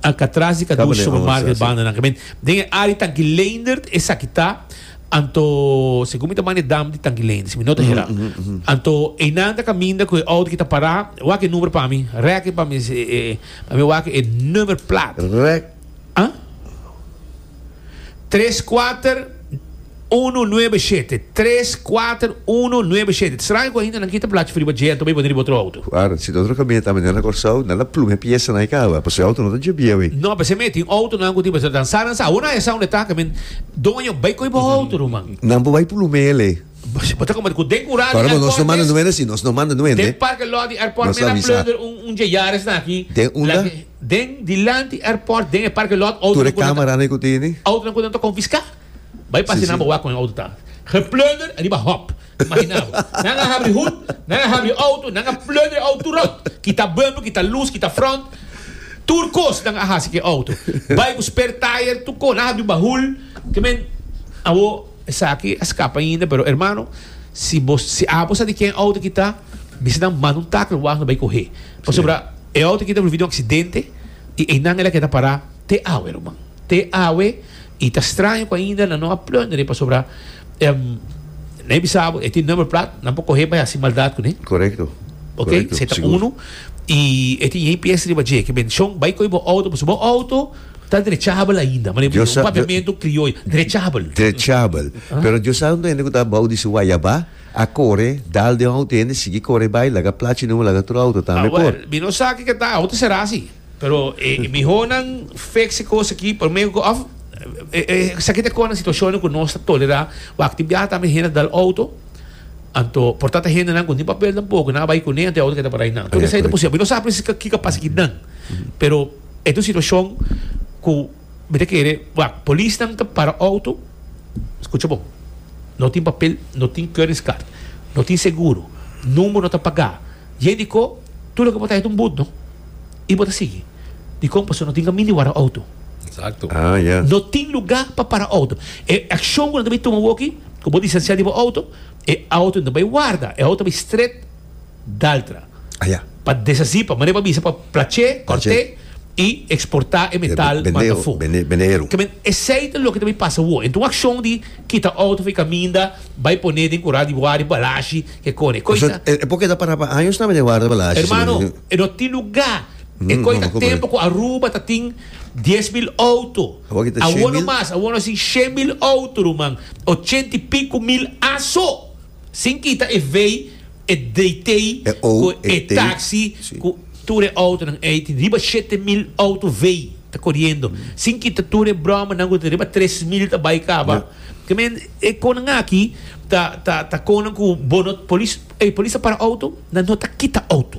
Alcatraz di Caduce Tabatin Supermarket once, si. bandanan ke men den e área tanki Leendert esaki ta anto segun mi ta manda e dam di tanki Leendert si mi no ta hera anto einan ta kaminda ku e outo ki ta pará wak e number pa mi rèk e pa mi e e pa mi wak e number plaat Rèk. a. Tres kuater unu nuebe shete tres kuater unu nuebe shete ta straño ku ahinda nan kita plachi riba dje anto bo e pone riba otro outo. Guarda, si otro kamioneta a mene na Kòrsou, nan a pluma e piesa na e kaba, pasobra e outo no ta dje bieu ei. No, p'esei mi a tin outonan ku tin pasobra nan sa, nan sa. Awor nan a yasa unda e ta, kamen, Doño, bai kohe bo outo, ruman. Nan por bai pluma el ei. Bo ta komento ku den kura di airport mes. Pasobra nos no manda no wende si, nos no manda no wende. Den parke lòt di airport mes a plunder un dje Yaris na aki. Den unda? Den dilanti airport den e parke lot autonan ku nan ta. Tur e camera nan ku tini. Autonan ku nan ta konfiska. Bai pasa nan bo wak kon e auto ta. Geplunder riba hop. Imagina bo. Nan a habri hoed, nan a habri auto, nan a plunder e auto tur rond. Kita bumper, kita luz, kita front. Tur kos nan a hasi ku e auto. Bai ku spare tire tur kos. Nan a habri bahul. Ke men awo. Esaki a scapa ainda, pero hermano, si bo, si abo sa di ken auto aki ta, bisa nan manda un tackle wak lo bay coge. Pasobra e auto aki ta volvi den un accidente y eynan el a keda para te awe ruman. Te awe y ta straño cu ainda nan no a plunderen pasobra nan a bisa abo e tin number plat, nan por coge bay haci maldad cune. Correcto, correcto, sigur. Ok, sey ta uno y e tin yey pies riba dje. Ke bendicion bay coge bo auto pasobra bo auto. Ta drechabel ainda, mane bo un papiamento crioyo, drechabel. Drechabel. Pero Dios a un duende cu ta abao di su wayabá, a core, dal den un auto hende, sigui core bai, laga plachi nubo, laga otro auto tambe por. Mi no sa kiko ta auto será asi. Pero e miho nan fix e cos aki prome, of esaki ta conta situacionnan cu nos ta tolerá. Wak tin biaha tambe hende a dal auto, anto por tata hendenan cu nin papel tampoco, nan a bai cune, anto e auto keda parai nan. Tur esaki ta posibel. Mi no sa precies kiko a pasa aki nan, pero. E ta un situashon ku mi ta kere, wak, polisnan ta para outo, skucha bon, no tin papel, no tin keuringskaart, no tin seguro, number no ta pagá, dje dikó tur loke bo ta heta un but no, i bo ta sigui. Dikon? Pasobra no tin kamin di wara outo. No tin lugá pa para outo. E akshon ku nan ta bai tuma awoki, ku bo distansiá di bo outo, e outo no ta bai warda, e outo ta bai stret. Daltra pa deshací, pa manera pa bisa, pa plach'é, cort'é i exportá e metal manda afó. Ta bende, esei ta loke ta bai pasa awo. Enta un accion di kita auto afe caminda, bai poné den corral di warda e balashi, kekor e coisa. E poke ta para pa años nabe den warda e balashi. Hermano, e no tin lugá. E coi ta tempo cu Aruba ta tin dies mil auto. Awo no mas, awo nos tin shen mil auto, ruman. Ochenta i pico mil aso Sin kita e vei, e dtei ku e taksi ku tur e outonan ei tin riba shete mil outo vei ta koriendo. Sin kita tur e bromanan ku tin riba tres mil ta bai kaba. Ke men e konan aki ta ta konan ku bo no polis ey polis a para outo nan no ta kita outo.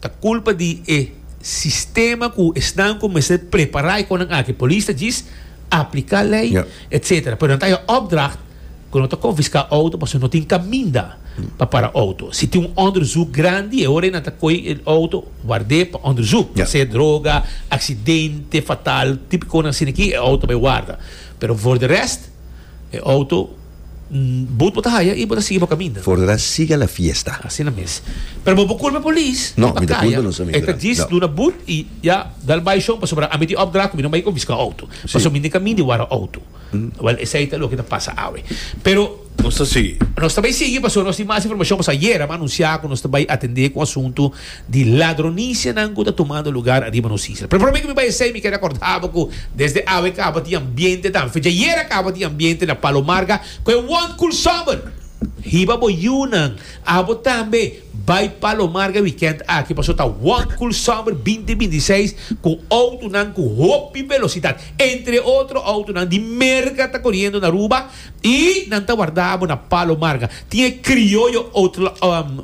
Ta culpa di e sistema cu esnan cu mester prepara e conan aki. Polis ta djis aplica ley etc. Pero nan ta haya opdracht cu no ta confisca auto pasobra no tin caminda pa para auto. Si tin un onderzoek grandi e ora nan ta coge e auto warde pa onderzoek. Ta ser droga, accidente fatal, tipo conan asina aki e auto bay warda. Pero for de rest e auto. But bo ta haya y bo ta sigui bo caminda. Fordera siga la fiesta. Asina mes. Pero bo bo culpa polis. No, mi ta culpa nos amigo nan. Esta djis duna but y ya dal bay shon pasobra ami tin opdracht cu mi no bay confisca auto. Paso mi nica mindi wara auto. Well, esey ta loke ta pasa awe. Pero. Nos ta sigui. Nos ta bay sigui paso nos tin mas informacion paso ayera a anuncia cu nos ta bay atende cu asunto. di ladronicianan cu ta tumando lugar ariba nos isla. Promé cu mi bay esey mi ker acordabo cu desde awe caba tin ambiente tambe. Fecha ayer a caba tin ambiente na Palo Marga cu e one cool summer. Hiba bo yiunan, abo tambe bay Palo Marga weekend aki paso ta one cool summer binti binti seis cu autonan cu hopi velocidad. Entre otro autonan di Merca ta coriendo na Aruba y nan ta wardabo na Palo Marga. Tin e crioyo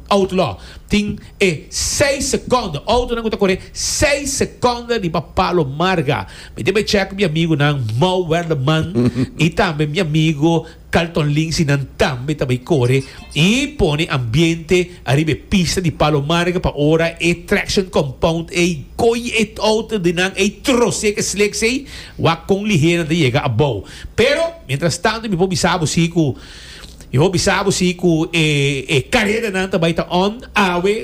outlaw. Tin e seis seconde, autonan cu ta coré seis seconde riba palo marga. Mi tin bay check mi amigonan Mou Werleman y tambe mi amigo Carlton Lindsay nan tambe ta bay core y pone ambiente ariba e pista di palo marga pa ora e traction compound ey coy e auto di nan ey trose cu e slicks ey wak con lihenan ta yega abao. Pero mientras tanto mi por bisa bo si cu Mi hopi sa bo si ku e e kareranan ta bai ta on awe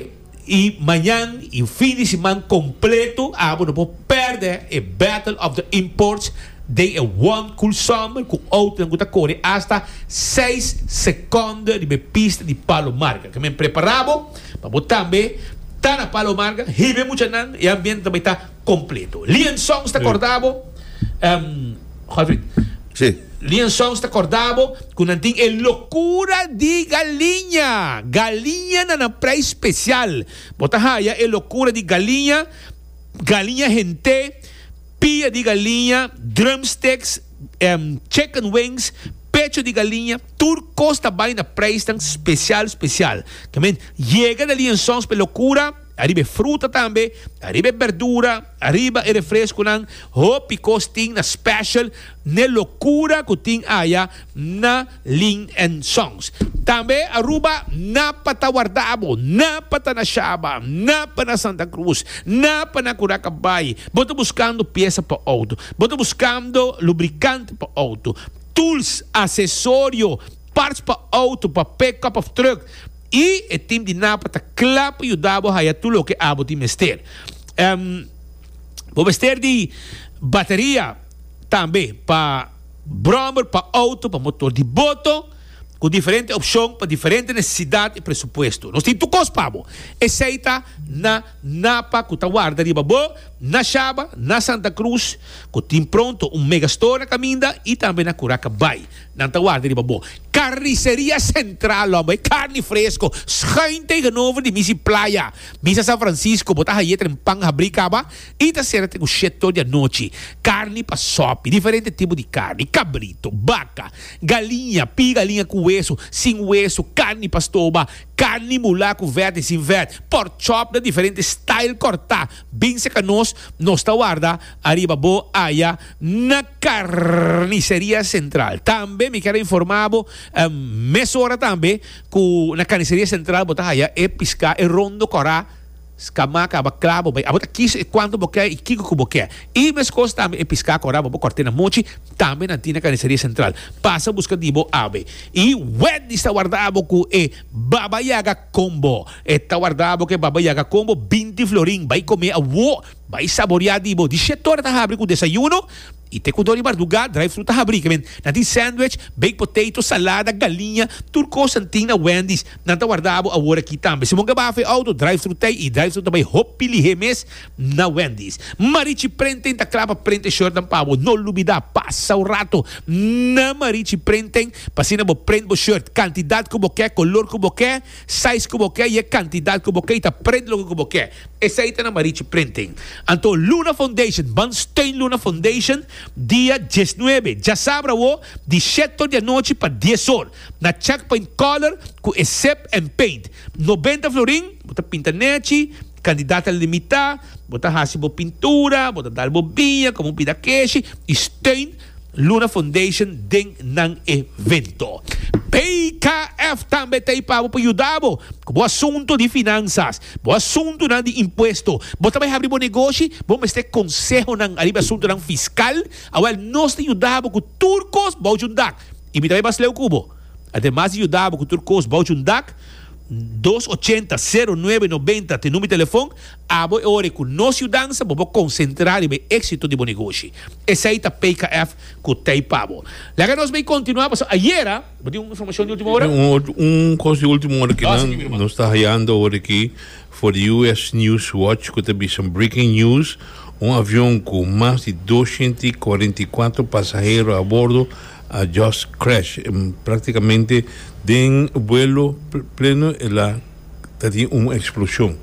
i mañan i fin di siman kompleto. Abo no por pèrdè e Battle of the Imports den e One Cool Summer ku outonan ku ta kore asta seis sekonde riba e pista di Palomargan. Ke men prepara bo pa bo tambe ta na Palomargan. Hibe muchanan e ambiente ta bai ta. completo. Lian Songs ta corda bo, Godfried. Si. Lian Songs ta corda bo cu nan tin e locura di galiña. Galiña na nan prei special. Bo ta haya e locura di galiña, galiña hent'é, pia di galiña, drumsticks, chicken wings, pecho di galiña, tur cos ta bay na preisnan special, special. Tambe yega na Lian Songs p'e locura. Ariba e fruta tambe, ariba e berdura, ariba e refresconan, hopi cos tin na special n'e locura cu tin aya na Lin and Sons. Tambe Aruba na pa ta wardabo, na pa ta na Shaba, na pa na Santa Cruz, na pa na Curaca Bay. Bo ta buscando pieza pa auto, bo ta buscando lubricante pa auto, tools, accesorio, parts pa auto, pa pe cup of truck, I e tim di napa ta kla pa yuda bo haya tur loke abo tin mester. Em, Bo mester di bateria tambe pa brommer, pa auto, pa motor di boto, ku diferente opshon pa diferente nesesidat i presupuesto. Nos tin tur kos pa bo. Esei ta na napa ku ta warda riba bo na Shaba, na Santa Cruz, ku tin pronto un megastore na kaminda i tambe na Curaca Bay. Nan ta warda riba bo. Carniceria Central lo, e carni fresco, schuin tegenover di Misi Playa, Misa San Francisco, bo ta haye tren pan habri caba y ta cera tren cu shete or di anochi. Carni pa sopi, diferente tipo di carni, cabrito, baca, galiña, pie galiña cu hueso, sin hueso, carni pa stoba, carni mulá cu verd y sin verd, pork chop na diferente style corta. Bin serka nos, nos ta warda ariba bo aya na Carniceria Central. Tambe mi kier a informa bo, mesora tambe cu na Carniceria Central bo ta haya e pisca, e rondo cora, scamá caba cla bo bay. Abo ta kies e cuanto bo kier y kico cu bo kier. Y mescos tambe e pisca cora bo corte na mochi, tambe nan tin na Carniceria Central. Pasa busca di bo awe. Y wed di sta warda abo cu e Baba Yaga. Con bo e ta warda bo ke baba yaga con bo binti florin bay come awo bay saboria di bo di shet ora ta habri cu desayuno y te cu dor di marduga drive thru ta habri kimen nan tin sandwich baked potato salada galiña tur cosanan tin na Wendy's nan ta warda bo awor aki tambe si bo gaba fe auto drive thru tey y drive thru ta bay hopi lihe mes na Wendy's. Marichi Prenten ta klaba prente shortnan pa bo. No lubida, pasa un rato na Marichi Prenten pa asina bo prent bo short kantidat ku bo ke, kolor ku bo ke, sais ku bo ke i e kantidat ku bo ke i ta prent loke ku bo ke. Esei ta na Marichi Prenten. Anto Luna Foundation, ban steun Luna Foundation dia diesnuebe, djasabra awo, di shetor di anochi pa dies or, na Chakpoint Color ku e Sip and Paint. Nobenta florin, bo ta pinta nechi, Kandidat ta limitá, bo ta hasi bo pintura, bo ta dal bo biña, komo bida keshi, i steun Luna Foundation den nan evento. BKF tambe ta ei pa bo por yuda bo ku bo asuntu di finansas, bo asuntunan di impuesto. Bo ta bai habri bo negoshi? Bo mester konsehonan ariba e asuntunan fiskal? Awèl, nos ta yuda bo ku tur kos bouch un dak i mi ta bai basleu ku bo. Ademas di yuda bo ku tur kos bouch un dak, dos ochenta, sero nuebe nobenta t'e number telefon, abo e ora e cu nos yudansa bo por concentra riba e exito di bo negoshi. Esey ta PKF cu t'ey pa bo. Laga nos bay continua pasobra ayera bo tin un informacion di ultimo ora. Un cos di ultimo ora cu nan nos ta hayando ora aki for di US. News Watch cu ta bisa breaking news, un avion cu mas di dosciento y cuarenta y cuatro pasahero a bordo, A just crash practicamente den vuelo pleno el a tatin un explosion.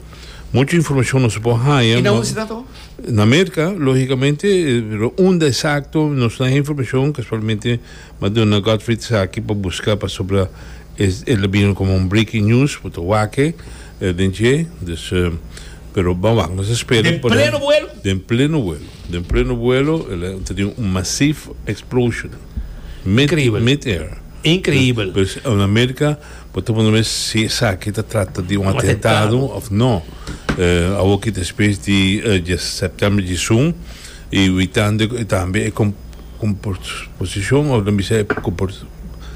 Mucho informacion nos por haya. Y na hunde ta to? Na America logicamente pero unda exacto nos no hay informacion casualmente ma duna Godfrey esaki pa busca pasobra el a bini como un breaking news bo ta wake den dje, dus pero bawak nos a spera por den pleno vuelo. Den pleno vuelo el a tenido un masief explosion mid-air. Increíbel. Pues en America bo ta wonder mes si esaki ta trata di un atentado of no. Awor ki despues di septiembre di sun y we tande tambe e composición of lo bisa e.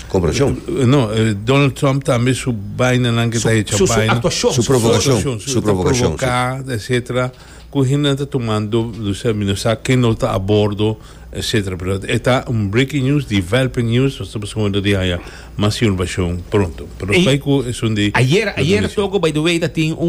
Comportacion. No Donald Trump tambe su baina nan ke ta hecha baina. Su actuacion. Su provocacion. Su provocacion. Su provocacion. Su provoca etcetera. Cu hende ta tumando lucia mi no sa ken lo ta a bordo etcetera pero e ta un breaking news developing news nos ta busca hondo di haya mas informacion pronto pero nos bay cu esun di Ayer, ayer toco by the way ta tin un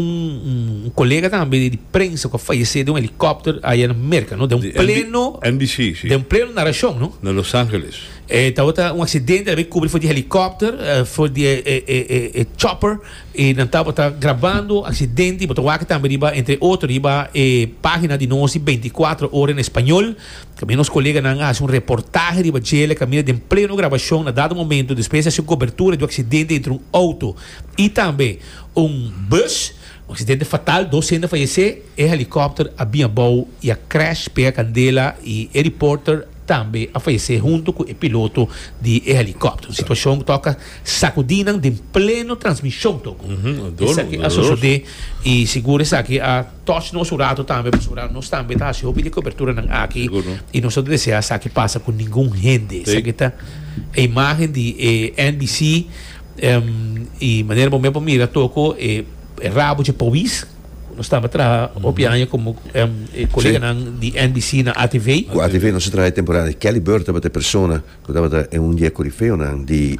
un colega tambe di prensa cu a fayece den un helicopter aya na Merca no den un pleno NBC si den un pleno naracion no na Los Angeles e tabata un accidente a bay cubri for di helicopter for di e e e chopper E nan tabata grabando aksidente y bo ta wak tambe riba entre otro riba e pagina di nos di Veinticuatro Ora en Español. Tambe nos koleganan a hasi un reportahe riba djele kaminda den pleno grabashon na dado momento despues di hasi un kobertura di un aksidente entre un outo y tambe un bus. Un aksidente fatal, dos hende a fayesé. E helikopter a bin abou y a crash, pega kandela y e reporter tambe a fayesé hunto cu e piloto di e helikopter. Un situashon cu toka. Sacudinan den pleno transmision toco. Esaki a sosode y sigur esaki a touch nos un rato tambe pasobra nos tambe ta haci hopi di coberturanan aki y nos no ta desea esaki pasa cu ningun hende. Esaki ta e imagen di e NBC y manera bo mismo a mira toco e rabo dje pawis cu nos tambe a traha hopi aña como coleganan di NBC na atv. Cu atv nos a traha e temporada di Kelly Byrd tabata e persona. Cu tabata e un di e corifeonan di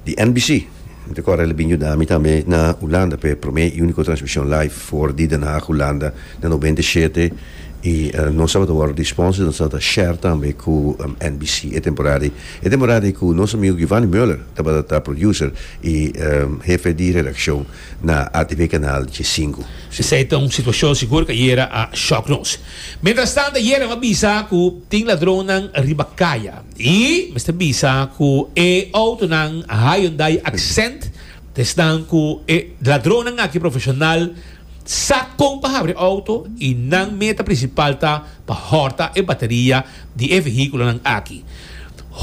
di NBC. Mi ta corda el a bin yuda mi tambe na Hulanda pa e prome y unico transmision live for di Den Haag, Hulanda na noventa y shete y nos tabata wordo di sponsors, nos tabata share tambe cu NBC e temporada ey. E temporada ey cu nos amigo Giovanni Mueller tabata ta producer y hefe di redaccion na atv canal Diesingu. Esey ta un situacion sigur ca yera a shock nos. Mientrastant ayer em a bisa cu tin ladronnan riba caya y mester bisa cu e autonan Hyundai Accent ta esnan cu e ladronnan aki profesional sa con pa habri auto y nan meta principal ta pa horta e bateria di e vehiculonan aki.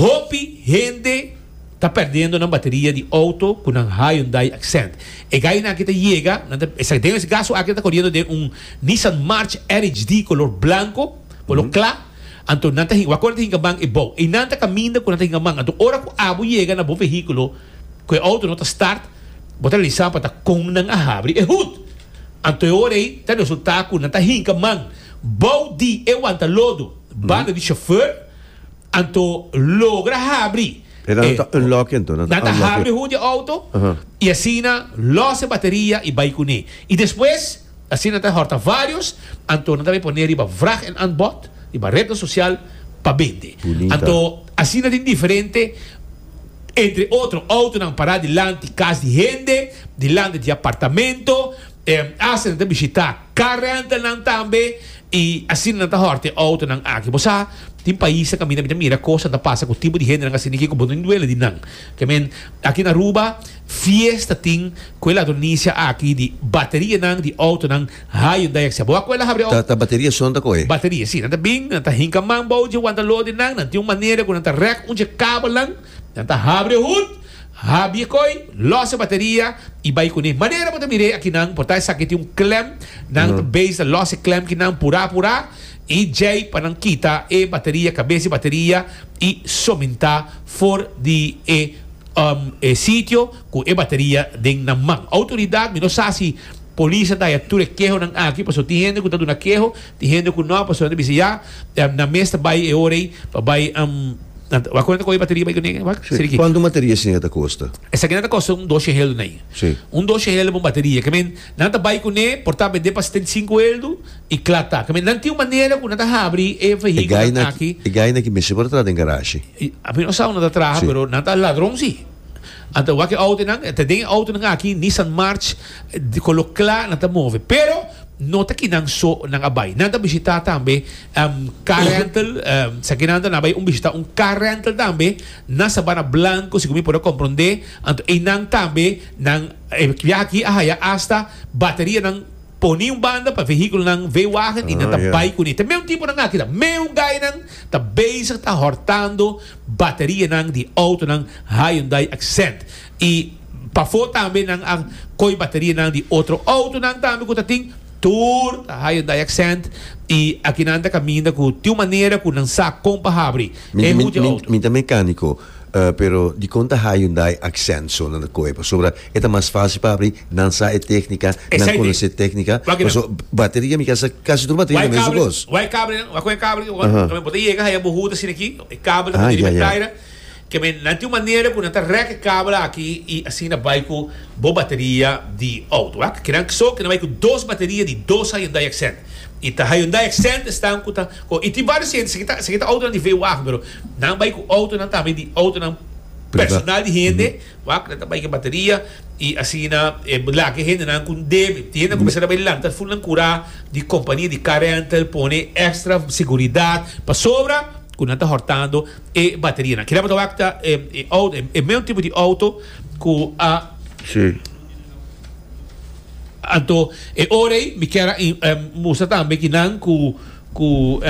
Hopi hende. Ta perdiendo nan bateria di auto cu nan Hyundai Accent. E gainan aki ta yega, nan ta esaki den es gaso aki nan ta coriendo den un Nissan March RHD color blanco, color cla, anto nan ta hin, wak ora ta hinca man e bou. Einan ta caminda cu nan ta hinca man, anto ora cu abo yega na bo vehiculo cu e auto no ta start, bo ta realiza pa ta con nan a habri e hood. Anto e ora ei ta resulta cu nan ta hinca man bou di e wanta lodo, banda di chauffeur, Anto logra habri e. E nan ta unlock anto. Nan ta habri hoed e auto y asina los e bateria y bay cune. Y despues asi nan ta horta varios anto nan ta bay pone riba vraag en aanbod riba rednan social pa bende. Anto asina tin diferente entre otro autonan para dilanti cas di hende, dilanti di apartamento, haste nan ta bishita. Car rental nan tambe y asina nan ta horta e auto nan aki. Bo sa tin pais a caminda mi ta mira cos nan ta pasa cu tipo di hende nan asina kico bo tin duele di nan. I mean aki na Aruba fiesta tin cu e ladronisia aki di bateria nan di auto nan high on die except bo a cu el a habri auto. Ta bateria su nan ta coge. Bateria si nan ta bin nan ta hinca man bao dje wanta lo di nan nan tin un manera cu nan ta rek un dje cabalnan. Nan ta habri e hut, habi e koi, los e bateria y bai cune. Manera bo ta mira aki nan por ta esaki tin un klem, nan ta base ta los e klem ki nan pura pura y djei pa nan kita e bateria, cabeza e bateria y sominta for di e e sitio cu e bateria den nan man. Autoridad mi no sa si police a daya tur e kehonan aki paso tin hende cu ta duna keho Tin hende ku no pasobra nan bisa ya nan mes ta bai e ora ei pa bai wak kunan ta kohe bateria bai kuné wak seri ki. Kuantu un bateria asina ta kosta? Esaki nan ta kosta un dos sheheldu na iya. Si. Un dos sheheldu pa un bateria ke men nan ta bai kuné por ta bendé pa setenta i sinku heldu i kla ta ke men nan tin un manera ku nan ta habri e vehikulonan aki. E gaina aki mester por ta traha den garashi. Ami no sa unda ta traha pero nan ta ladron si. Anta wak e outonan, ta den e outonan aki, Nissan March, cu lo cla nan ta move. Pero no ta kinan so nan a bay. Nan ta bishita tambe car rental, esaki nan ta na bay un bishita un car rental tambe na Sabana Blanco, segun mi por a compronde. Anto eynan tambe nan e biaha aki a haya hasta baterianan poni un banda pa vehiculonan, veewagen, y nan ta bay cun'e. Ta meun tipo nan aki ta. Meun gainan ta bezig ta hortando. Baterianan di outonan Hyundai Accent y pafó tambe nan a coi baterianan di otro outonan tambe cu ta tin tur ta Hyundai Accent y aki nan ta caminda cu tin un manera cu nan sa con pa habri e hoed di outo. Min ta mecanico pero dicon ta Hyundai Accent so nan ta coe pasobra e ta mas facil pa habri, nan sa e tecnica, nan conoce e tecnica, paso bateria mi casi tur bateria ta mesmo cos. Wak e cabri nan, wak cu e cabri, bo ta yega haya bo hoed asina aki. E kabel ta bini riba e traira. Keme nan tin un manera ku nan ta rek e kabel aki i asina bai ku bo bateria di outo. Aki kiran kso ke nan bai ku dos bateria di dos Hyundai Accent. I ta Hyundai Accent esnan ku ta ko. I tin vários hende, esaki ta esaki ta outonan di vw wagen pero nan bai ku outonan tambe di outonan personal di hende. Wak nan ta bai ke bateria y asina e lak e hende nan con debe. Tin hende nan cuminsa ta bai lanta full nan cura di compania di car rental pone extra seguridad pasobra cu nan ta hortando e bateria nan. Kilaboto wak ta e auto e meun tipo di auto cu a. Si. Anto e ora ey mi kier a mustra tambe kinan cu cu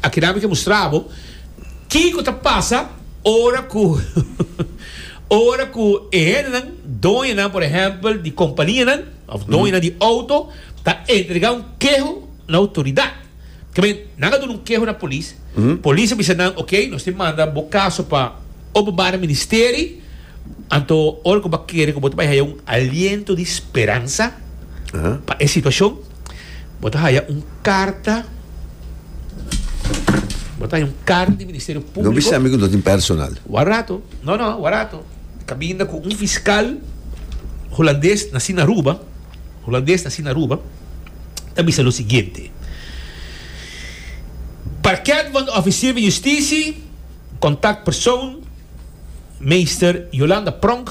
aki nan mi ke mustrabo kico ta pasa. Ora ku ora ku e hendenan, doñonan por ehèmpel di kompanianan òf doñonan di outo, ta entregá un keho na outoridat, ta bini nan a duna un keho na polis, polis a bisa nan, oke, nos tin manda bo kaso pa Openbare Ministeri, anto ora ku bo a kere ku bo ta bai haya un aliento di speransa pa e situashon. Bo ta haya un carta Bo ta haya un carta di Ministerio Publico. No bisa mi cu no tin personal. Wak rato. No, no, wak rato. Cabinda cu un fiscal Hulandes naci na Aruba, Hulandes naci na Aruba, ta bisa lo siguiente. Parket van de Officier van Justitie, Contactpersoon, Meester Yolanda Pronk,